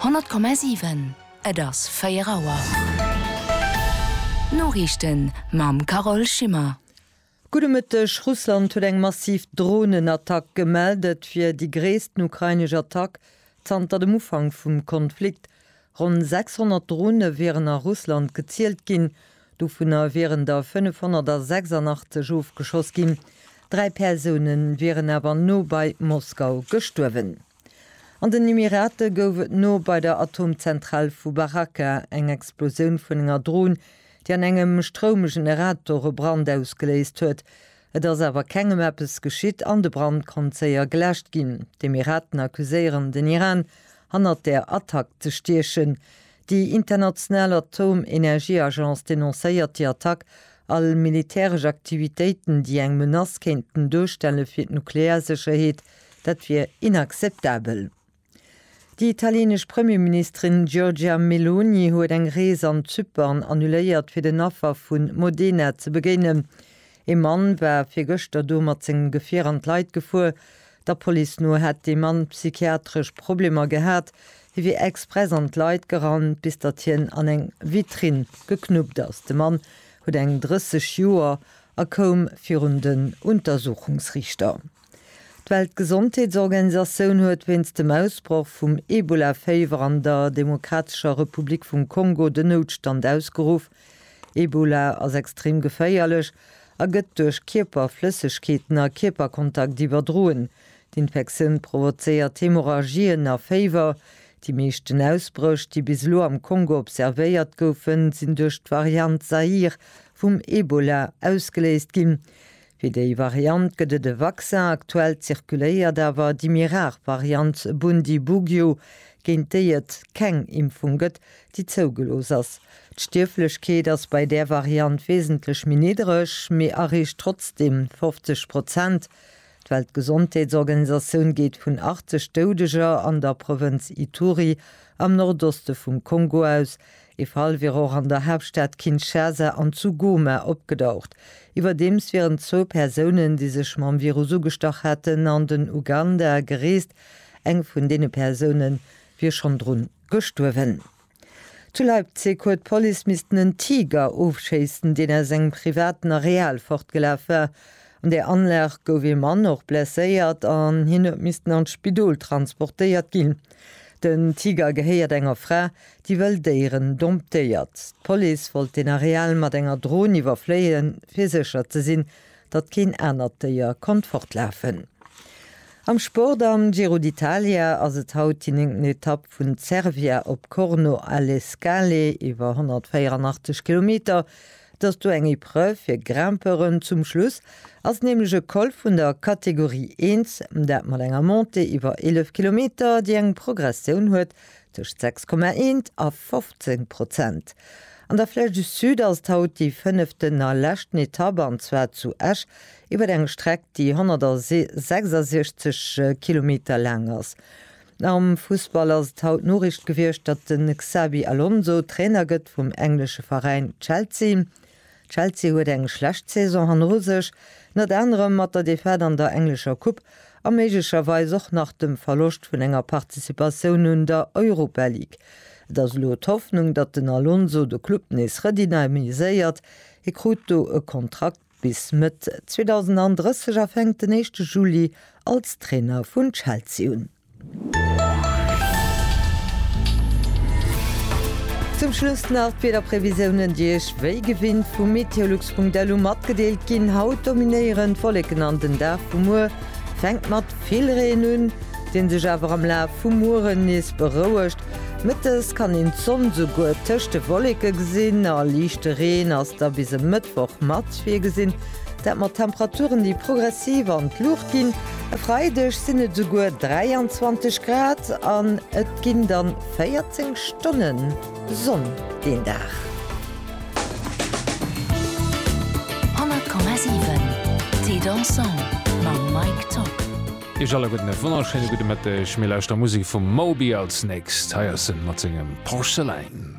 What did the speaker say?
100,7 Et ass 4 Auer. D'Noriichten mam Carole Schimmer. Gudde Mëtteg. Russland huet eng massiv Dronenattack gemellt. Et wier déi gréissten ukrainesch Attack zanter dem Ufank vum Konflikt. Ronn 600 Drone wieren a Russland gezielt ginn, dovunner wieren der 586 ofgeschoss ginn. Dräi Persoune wieren awer no bei Moskau gestuerwen. An den Emirate gouf et no bei der Atomzentral vu Baraka eng Explosioun vun enger Dron, déi an engem Stroumgeneratore Brand ausgeléist huet. Et ass awer kengem eppes geschitt an de Brand konnt séier geläscht ginn. D'Emiraten accuséieren den Iran, hannert der Attack ze stiechen. Déi international Atomenergieagence denoncéiert déi Attack, all militäresch Aktivitéiten, déi eng Menace kéinten duerstelle fir d'Nuklearsécherheet, dat wier inakzeptabel. Déi italienesch Premierministerin Giorgia Meloni huet eng Rees an Zypern annuléiert, fir den Affer vu Modena ze begéinen. Ee Mann war virgëschter do mat sengem Gefier an d'Leit gefuer. Der Police no hätt dee Mann psychiatresch Problemer gehat. Hie wier express an d'Leit gerannt, bis datt hien an eng Vitrinn geknuppt ass. De Mann huet eng 30 Joer a koum virun den Untersuchungsriichter. D'Weltgesondheetsorganisatioun huet wéinst dem Ausbroch vum Ebola-Féiwer an der Demokratescher Republik vum Kongo den Noutstand ausgeruff. Ebola ass extrem geféierlech a gëtt duerch Kierperflëssegkeeten a Kierperkontakt iwwerdroen. D'Infektioun provozéiert Hemorrhagien a Féiwer. Déi meeschten Ausbréch, déi bis elo am Kongo observéiert goufen, sinn duerch d'Variant Zaïre vum Ebola ausgeléist ginn. Fir déi Variant gëtt et e Vaccin, aktuell zirkuléiert awer déi méi rar Variant Bundibugyo, géint déi et keng Impfung gëtt, déi zougelooss ass. D'Stierflechkeet ass bei där Variant wesentlech méi niddereg, mee areecht trotzdeem 50 Prozent. D'Weltgesondheetsorganisatioun geet vun 80 Doudeger an der Provënz Ituri am Nordoste vum Kongo aus, Ee Fall wier och an der Haaptstad Kinshasa an zu Goma opgedaucht. Iwwerdeems wieren zwou Persounen, déi sech mam Virus ugestach haten, an den Uganda gereest. Eng vun deene Persoune wier schonn dru gestuerwen. Zu Leipzig huet d'Police missten en Tiger ofschéissen, deen aus engem privaten Areal fortgelaf war. An där Anlag gouf ee Mann och blesséiert an hien huet missten an d'Spidol transportéiert ginn. Den Tiger gehéiert enger Fra, déi wëll Déieren domptéiert. D'Police wollt den Areal mat enger Dron iwwerfléien, fir sécher ze sinn, datt keen anert Déier konnt fortlafen. Am Sport, Am Giro d'Italia ass et haut déi néngten Etapp vun Cervia op Corno alle Scale, iwwer 184 Kilometer. Et ass do eng Epreuve fir Grimpeuren. Zum Schluss ass nämlech e Col vun der Kategorie I, dat mat enger Montée iwwer 11 Kilometer, déi eng Progressioun huet Tëscht 6,1 a 15 Prozent. An der Flèche du Sud ass et haut déi fënneften a leschten Etapp, an zwar zu Esch iwwer eng Streck, déi 166 Kilometer laang ass. Am Fussball ass et haut Noriicht gewiescht, datt de Xabi Alonso Trainer gëtt vum englesche Veräin Chelsea. Chelsea huet eng schlecht Saison hanner sech, ënnert anerem mat der Defaite an der englescher Coupe a méiglecherweis och nach dem Verloscht vun enger Participatioun un der Europa League. Et ass elo d'Hoffnung, datt den Alonso de Club nees redynamiséiert. Hie krut do e Kontrakt bis Mëtt 2030 a fänkt den éischte Juli als Trainer vun Chelsea un. Zum Schluss nach d'Wiederprevisiounen, déi Iech wéi gewinnt vu meteolux.lu matgedeelt ginn. Haut dominéieren d'Wolleken an den Dag vu muer fänkt mat vill Reen un, dee sech awer am Laf vum Mueren nees berouegt. Mëttes kann een d'Sonn souguer tëscht de Wolleke gesinn a liichte Reen ass da bis e Mëttwoch mat virgesinn. Dat mat Temperaturen, déi progressiv an d'Luucht ginn. E Freideg sinn et esouguer 23 Grad an et ginn dann 14 Stonne Sonn deen Dag. Iech alle gudden e wonnerschéine gudde Mëtteg. Mir lauschteren Musek vum Moby als nächst. Hei ass en mat sengem Porcelain.